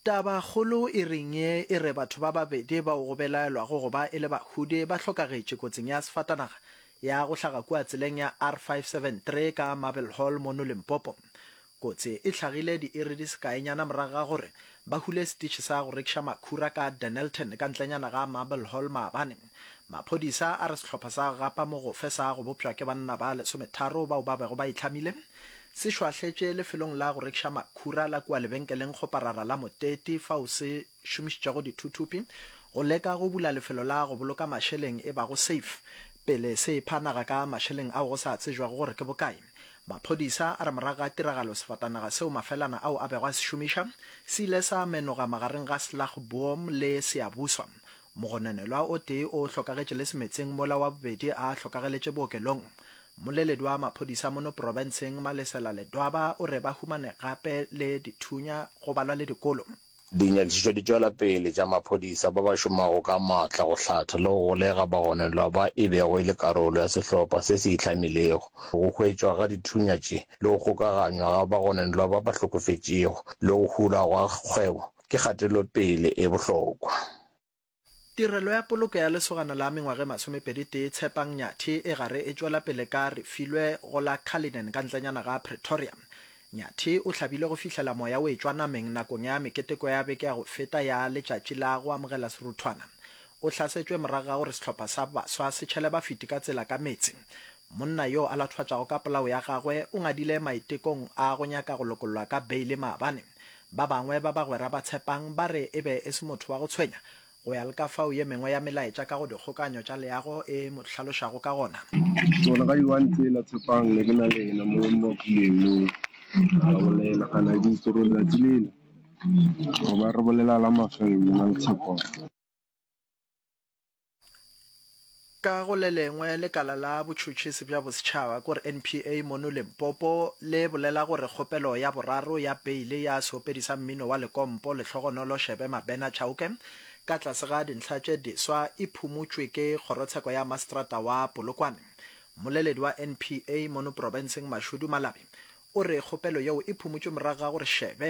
Tabakgolo e reng ye e re batho ba babedi bao go belaelwago go ba e le Bahude ba hlokagetše kotsing ya sefatanaga ya go hlaga kua tseleng ya R573 ka Marble Hall mono Limpopo. Kotsi e hlagile diiri di sekaenyana morago ga gore ba hule setitšhi sa go rekiša makhura ka Dennilton ka ntlenyana ga Marble Hall maabane. Maphodisa a re sehlopha sa Gapa Mogofe sa go bopšwa ke banna ba lesometharo bao ba bego ba itlhamile se šwahletše lefelong la go rekiša makhura la kua lebenkeleng kgoparara la Moteti fao se šomišitšego dithuthupi go leka go bula lefelo la go boloka mašeleng e bago safe pele se epha naga ka mašeleng ao go sa tsejwego gore ke bokae. Maphodisa a re morago ga tiragalo sefatanaga seo mafelana ao a bego a se šomiša se ile sa menoga magareng ga Slagboom le Siyabuswa Mogononelwa o tee o hlokagetše le semetseng mola wa bobedi a hlokageletše bookelong. Mmoleledi wa maphodisa mono profenseng Malesela Ledwaba o re ba humane gape le dithunya go balwa le dikolo. Dinyakišišo di tšwela pele tša maphodisa ba ba šomago ka matla go hlatha le go golega bagononelwa ba e bego e le karolo ya sehlopha se se ihlamilego. Go hwetšwa ga dithunya tše le go kgokaganywa ga bagononelwa ba ba hlokofetšego le go hulwa ga kgwebo ke kgatelopele e bohlokwa. Tirelo ya poloko ya lesogana la mengwaga e masomepedi-tee Tshepang Nyathi e gare e tšwela pele ka Refilwe go la Cullinan ka ntlenyana ga Pretoria. Nyathi o hlabile go fihlela moya o etšwa nameng nakong ya meketeko ya beke ya go feta ya Letšatši la go Amogela Seruthwana. O hlasetšwe morago ga gore sehlopha sa baswa se tšhele bafiti ka tsela ka meetse. Monna yo a lathwatšago ka polao ya gagwe o ngadile maitekong a go nyaka go lokollwa ka beile maabane. Ba bangwe ba bagwera ba Tshepang ba re e be e se motho wa go tshwenya, go ya le ka fao ye mengwe ya melaetša ka go dikgokaanyo tša leago e mo hlalošago ka gona. Gore ga Iwan tsela Tshepang ne ke na le yena mo mmakuleng mo, ra bolela ga na di itse gore letsatsi lele go ba re bolela la mafelelo na le Tshepang. Ka go le lengwe, lekala la botšhotšhisi bja bosetšhaba ko re NPA mono Limpopo le bolela gore kgopelo ya boraro ya beile ya seopedi sa mmino wa lekompo Lehlogonolo Shebe Mabena Chauke ka tlase ga dintlha tše diswa e phumutšwe ke kgorotsheko ya maseterata wa Polokwane. Mmoleledi wa NPA mono porofenseng Mashudu Malabi o re kgopelo yeo e phumutšwe morago ga gore Shebe